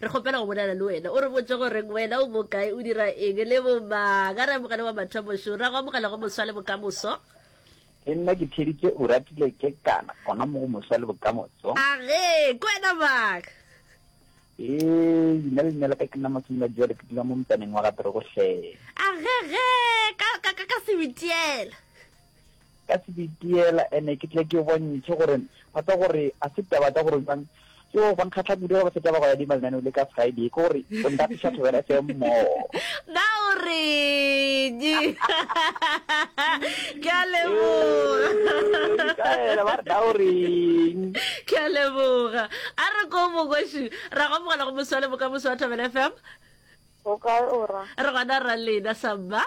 Re kgopela go bolela le wena, o re botše gore wena o bokae, o dira eng, le bo mang. A re amogele wa mathomo šo. Ra go amogela go moswa le bokamoso. Le nna ke theeditše Oratile Kekana gona mo go moswa le bokamoso. A re, Ke wena mang? Ee, leina le lena la ka ke nna Masimoladi bjale ke dula mo motsaneng wa ga Terogohleng. A re, Ge, ka, ka, ka, ka Sebitiela. ka se di diela, ene ke tle ke bontšhe gore ga se gore a se taba tsa gore jang yo ba nkgatlha kudu ga ba feta ba go ya dima lenaneo le ka Friday ke gore o ntapiša thobela se mmo ba o reng ke a leboga ka ela ba re ba o reng ke a leboga a re ko mokoši ra go mogala go moswale bokamoso wa thobela fm o kae ora re gona ra lena samba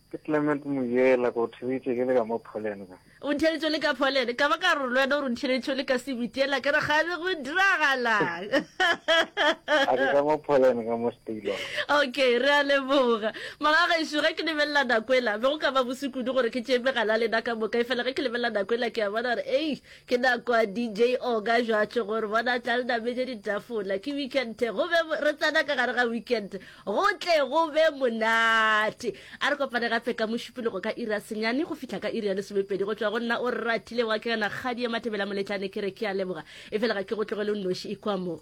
Ke Clement Muyela, ke go theeditše ke le ka mo Poland kwa. O ntheeditše o le ka Poland, ka ba ka re le wena o re ntheeditše o le ka Sebitiela, ke re kgale go diragalang? A ke ka mo Poland ka mo Steylon. Okay, re a leboga. Mara gešo, ge ke lebelela nako ela, be go ka ba bose kudu gore ke tšee megala ya lena ka moka, efela ge ke lebelela nako ela ke a bona gore ei, ke nako ya DJ Oga Jwatsho gore bona tla le nametše ditafola. Ke weekend, go be re tsena ka gare ga weekend. Go tle go be monate. A re kopane gape ka Mošupologo ka iri ya senyane go fihla ka iri ya lesomepedi. Go tšwa go nna o ratile wa ke yona kgadi ya Matebela Moletlane ke re ke a leboga. Efela ga ke go tlogele o nnoši, ikwa mo.